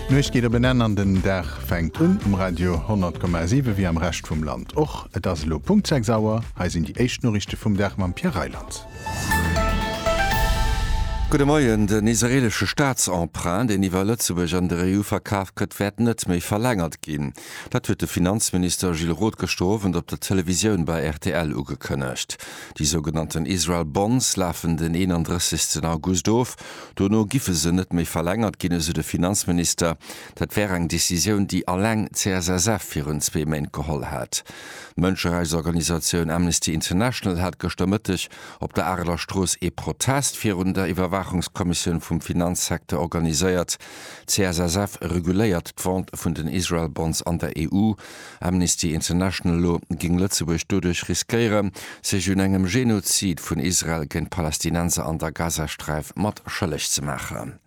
D'Nuecht geet op en Enn an den Dag fänkt un um Radio 100,7 wéi am Rescht vum Land och. Et ass elo Punkt 6 Auer. Hei sinn déi éischt Noriichte vum Dag mam Pierre Reyland. Gudde Moien, Den israeelesche Staatsemprunt, deen iwwer Lëtzebuerg an der EU verkaf gëtt, wäert net méi verlängert ginn. Dat huet de Finanzminister Gilles Roth gëschter Owend op der Televisioun bei rtl ugekënnegt. Déi sougenannten Israel Bonds lafen den 31 August of. Dono giffe se net méi verlängert ginn, esou de Finanzminister. Dat wär eng Decisioun, déi alleng d'CSSF virun zwee Méint geholl hat. D'Mënscherechtsorganisatioun Amnesty International hat gëschter Mëtteg op der Areler Strooss ee Protest virun der Iwwerwaachungskommissioun vum Finanzsecteur organiséiert. D'CSSF reguléiert d'Vente vun den Israel Bonds an der EU. Amnesty International no géing Lëtzebuerg doduerch riskéieren, sech un engem Genozid vun Israel géint d'Palästinenser an der Gazasträif mat schëlleg ze maachen.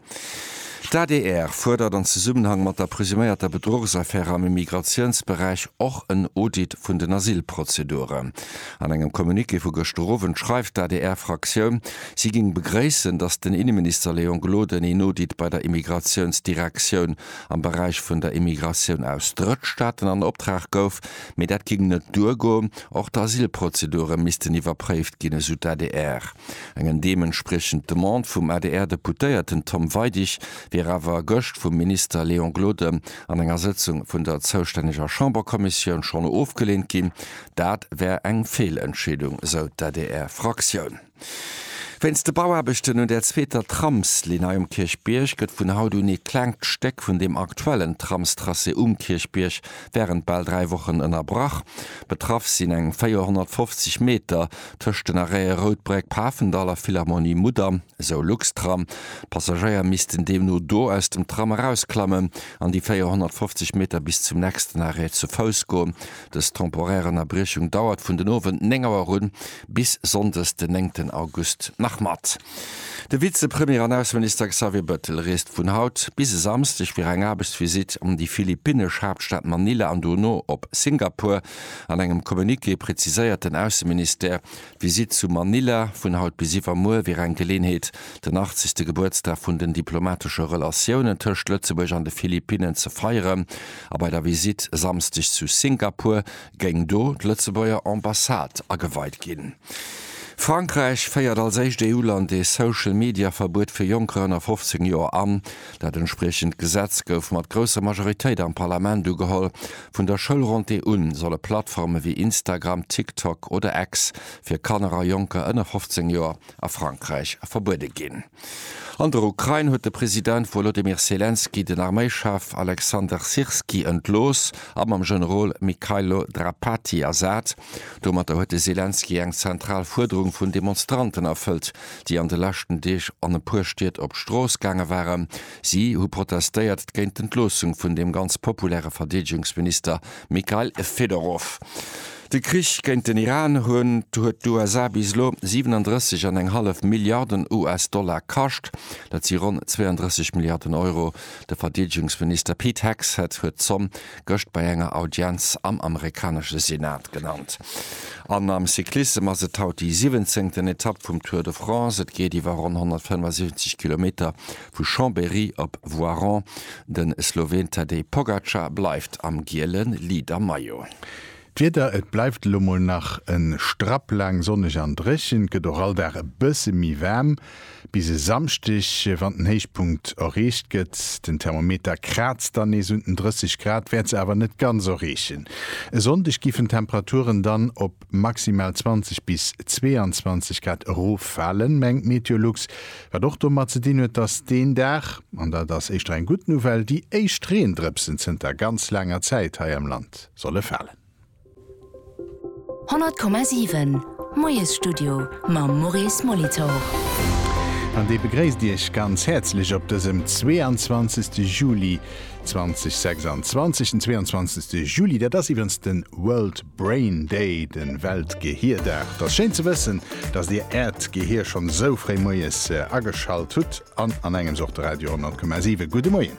D'adr fuerdert an Zesummenhang mat der presuméierter Bedruchsaffär am Immigratiounsberäich och en Audit vun den Asylprozeduren. An engem Communiqué vu gëschter Owend schreift d'ADR-Fraktioun, si géing begréissen, datt den Inneminister Léon Gloden een Audit bei der Immigratiounsdirektioun am Beräich vun der Immigratioun aus Drëttstaaten an Optrag gouf, mee dat géing net duergoen. Och d'Asylprozedure missten iwwerpréift ginn, esou d'ADR. Eng deementspriechend Demande vum ADR-Deputéierten Tom Weidig wier awer gëscht vum Minister Léon Gloden an enger Sëtzung vun der zoustänneger Chamberkommissioun schonn ofgeleent ginn. Dat wär eng Feelentscheedung, esou d'ADR-Fraktioun. Wéinst de Bauaarbechten un der zweeter Tramslinn hei um Kierchbierg gëtt vun haut un ee klengt Stéck vun deem aktuellen Tramstracé um Kierchbierg wärend bal dräi Wochen ënnerbrach. Betraff sinn eng 450 Meter tëscht den Arrête Routbréck, Pafendall a Philharmonie Mudam, esou Luxtram. D'Passagéier missten deemno do aus dem Tram erausklammen an déi 450 Meter bis zum nächsten Arrêt zu Fouss goen. Dës temporär Ënnerbriechung dauert vun den Owend 9 Auer un bis sonndes den néngten August nach mat. De Vizepremier an Ausseminister Xavier Bettel reest vun haut bis e Samsdeg fir eng Aarbechtsvisitt an déi philippinnesch Haaptstad Manila an dono op Singapur. An engem Communiqué präziséiert den Ausseministère, d'Visitt zu Manila vun haut bis iwwermuer wier eng Geleeënheet, den 80. Gebuertsdag vun den diplomatesche Relatiounen tëscht Lëtzebuerg an de Philippinnen ze feieren. A bei der Visitt e Samsdeg zu Singapur géing do d'Lëtzebuerger Ambassade ageweit ginn. Frankräich féiert als éischt EU-Land ee Social-Media-Verbuet fir Jonker ënner 15 Joer an. Dat entspriechend Gesetz gouf mat grousser Majoritéit am Parlament ugeholl. Vun der Schoulrentrée u solle Plattforme wéi Instagram, TikTok oder X fir Kanner a Jonker ënner 15 Joer a Frankräich verbuede ginn. An der Ukrain huet de President Wolodymyr Selenskyj den Arméischef Alexander Syrskyi entlooss a mam Generol Mykhailo Drapatyi ersat. Domatter huet de Selenskyj eng zentral Fuerderung vun Demonstranten erfëllt, déi an de leschten Deeg an e puer Stied op d'Strooss gaange waren. Si hu protestéiert géint d'Entloossung vun dem ganz populäre Verdeedegungsminister Mykhail Fedorov. De Krich géint den Iran hunn huet d'USA bis elo 37 an eng hallef Milliarden US-Dollar kascht, dat si ronn 32 Milliarden Euro. De Verdeedegungsminister Pete Hegseth huet d'Zomm gëscht bei enger Audienz am amerikanesche Senat genannt. An am Cyclissem ass et haut déi siwwenzéngten Etapp vum Tour de France. Et geet iwwer ronn 175 Kilometer vu Chambéry op Voiron. De Sloween Tadej Pogacar bleift am giele Leader-Maillot. D'Wieder, et bleift elo mol nach e Strapp laang sonneg an dréchen. Et gëtt och all Dag e bësse méi waarm, bis e Samschdeg, wann den Héichpunkt erreecht gëtt. Den Thermometer kraazt dann nees un den 30 Grad, wäert se awer net ganz erreechen. E Sonndeg giffen d'Temperaturen dann op maximal 20 bis 22 Grad eroffalen, mengt Meteolux, wat och domat ze dinn huet, datt deen Dag, an dat ass éischter eng gutt Nouvelle, déi éischt Reendrëpsen zënter ganz laanger Zäit hei am Land. solle falen. 100,7 Moiesstudio mam Maurice Molitor. An dee begréisst Iech ganz häerzlech op dësem 22 Juli 2026. Den 22 Juli, dat ass iwwrens de World Brain Day, de Weltgehierdag. T'ass schéin ze wëssen, datt Dir Äert Gehier schonn esou fréi moies ageschalt hutt an an engems och de Radio 100,7. Gudde Moien.